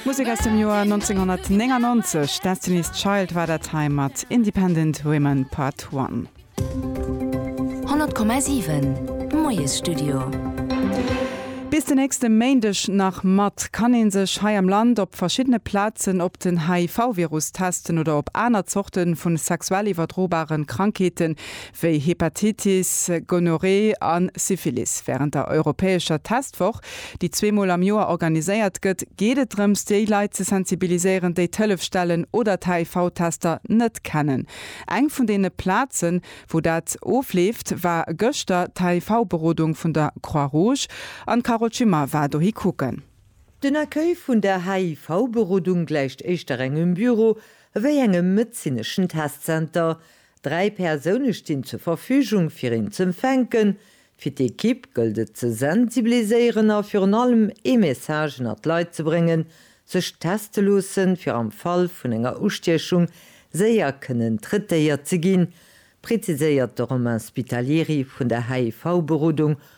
Musek aus dem Joer 1999, Destiny's Child war dat hei mat Independent Women Part One. 100,7 Moiesstudio. Bis den nächste Méindeg nach mat kann ee sech hei am Land op verschiddene Plazen op den HIV-Virus testen oder op aner Zorte vu sexuell iwwerdrobare Krankheeten, wéi Hepatitis, Gonorrhée a Syphilis. Wärend der europäescher Testwoch, déi zweemol am Joer organiséiert gëtt, geet et drëms, déi Leit ze sensibiliséieren, déi d'Hëllefstellen oder d'HIV-Tester net kennen. Eng vun deene Plazen, wou dat ofleeft, war gëschter d'HIV-Berodung vun der Croix-Rouge an d'Carole Schimmer war dohi kucken. Den Accueil vun der HIV-Berodung gläicht éischter engem Büro ewéi engem medezineschen Testzenter. Dräi Persoune stinn zur Verfügung fir een z'empfänken. Fir d'Equipe gëllt et ze sensibiliséieren a virun allem ee Message ënnert d'Leit ze bréngen, sech teste loossen, fir am Fall vun enger Ustiechung séier kënnen traitéiert ze ginn, präziséiert de Romain Spitalieri vun der HIV-Berodung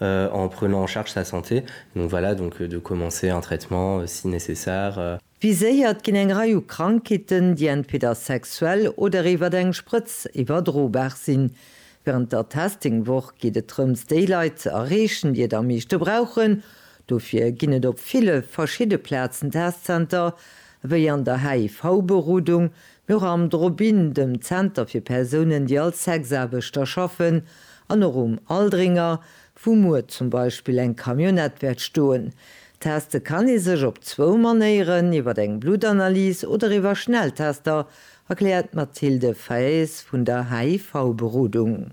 en prenant en charge sa santé, donc voilà, donc de commencer un traitement si nécessaire. Viséiert ginn eng Rei u Krankheeten, déi entweder sexuell oder iwwert eng Sprëtz iwwerdrobar sinn. Wärend der Testing-Woch geet et drëms, déi Leit ze erreechen, déi et am meeschte brauchen. Dofir ginn et op ville verschidde Plazen Testzenter, wéi an der HIV-Berodung, Och am Drop-In, dem Zenter fir Persounen, déi als Sexaarbechter schaffen, an och um Aldringer, wou muer zum Beispill eng Camionnette wäert stoen. Teste kann ee sech op zwou Manéieren, iwwer eng Bluttanalys oder iwwer Schnelltester, erkläert d'Mathilde Faes vun der HIV-Berodung.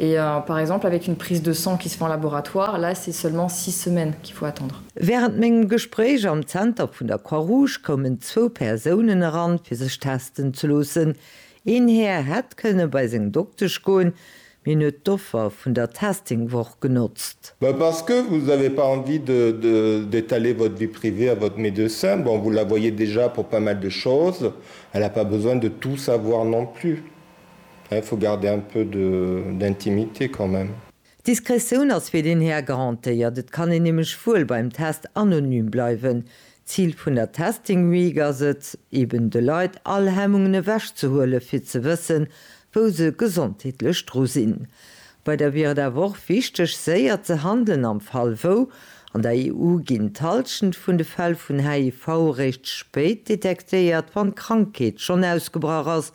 Et par exemple avec une prise de sang qui se fait en laboratoire, là c'est seulement six semaines qu'il faut attendre. Wärend mengem Gespréich am Zenter vun der Croix Rouge koumen zwou Persounen eran, fir sech testen ze loossen. Een Här hätt kënne bei seng Doktesch goen, mee en huet d'Offer vun der Testing-Woch genotzt. Mais parce que vous avez pas envie de d'étaler votre vie privée à votre médecin, bon vous la voyez déjà pour pas mal de choses, elle a pas besoin de tout savoir non plus. Il faut garder un peu de d'intimité quand même. D'Diskretioun ass fir deen Här garantéiert, et kann een nämlech wuel beim Test anonym bleiwen. D'Zil vun der Testing Week ass et, eben de Leit all Hemmungen ewech ze huelen, fir ze wëssen, wou se gesondheetlech dru sinn. Bei der wier et awer och wichteg, séier ze handelen am Fall wou. An der EU ginn d'Halschent vun de Fäll vun HIV eréischt spéit detektéiert, wann d'Krankheet schonn ausgebrach ass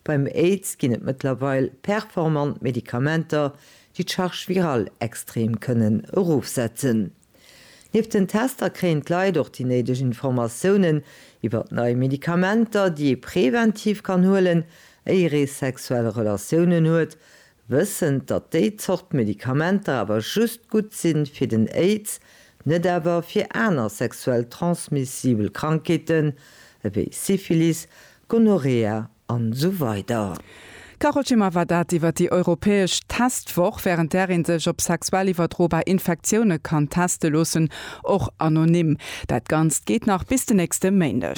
Beim Aids ginn et mëttlerweil performant Medikamenter, déi d'Charge virale extrem kënnen erofsetzen. Nieft den Tester kréien d'Leit och déi néideg Informatiounen iwwert nei Medikamenter, déi ee preventiv kann huelen, éier ee sexuell Relatiounen huet, wëssend, datt déi Zort Medikamenter awer just gutt si fir den Aids, net awer fir aner sexuell transmissibel Krankheeten ewéi Syphilis, Gonorrhea an esou weider. D'Carole Schimmer war dat iwwer déi europäesch Testwoch, wärend där ee sech op sexuell iwwerdrobar Infektioune kann teste loossen, och anonym. Dat Ganzt geet nach bis den nächste Méindeg.